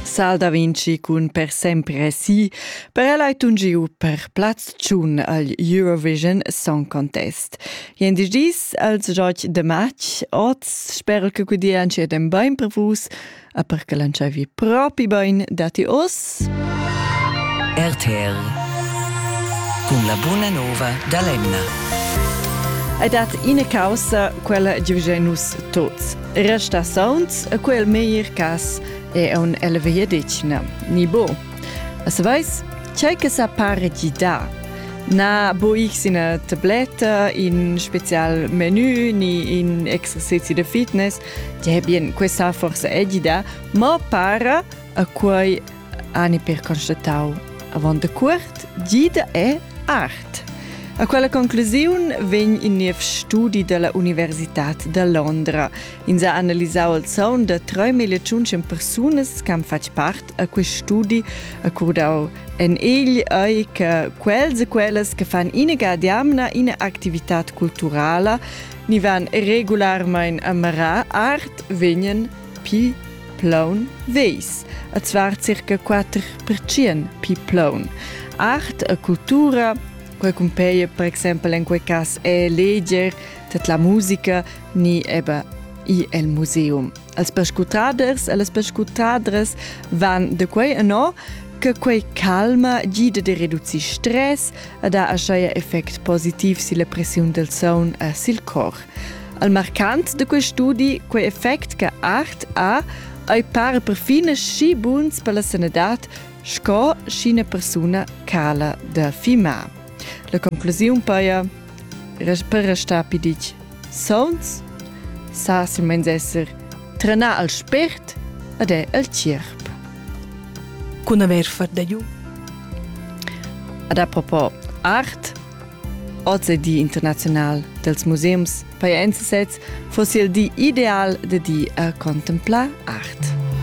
Sal da Vinci cun per sempre sì, per el hai tun giu per plaz tschun al Eurovision Song Contest. Jendi dis als joc de match, oz spero che gudian ci den bain per vus, a per che lanciavi propi bain dati os. RTR con la buona nova da Lemna. Ed dat ina causa, quella giugenus tots. Resta sauns a quel meglier cas è un elvegliadetgna, ni bo. As vais, c'è che sa pare di da. Na bo ich ina tabletta, in special menü, ni in exercizi de fitness, die bien questa forse edida, ma para a quei ani per constatau avon de cuort gida e art. A quella conclusiun vegn in niev studi della Universitad de Londra. Ins ha analisau il zaun da 3500 persunas che han fatg part a quest studi, accordau en egl ei che quels e quellas che fan ina diamna ina activitat culturala ni van regularmein a marar art vegnan pli plaun veis, e zvar circa quatter percient pli plaun. Art e cultura recumpeie per exempel in quei cas è leger tet la musica ni eba i el museum. Als pescutaders e las pescutadres van de quei no che quei calma gida de reducir stress e da aschaia effect positiv silla pressiun del saun e sil cor. Al marcant de quel studi quei effect che art ha ei par perfin schi buns per la sanadad sco sch'ina persuna cala da fimar. La conclusiun paia per restar piditg sauns sa silmeins esser trenar al spért ed è al cirp. Cun aver far da giu? Ad a propos art, Oz è di internaziunal dals museums. Pajais sez foss il di ideal da di a contemplar art.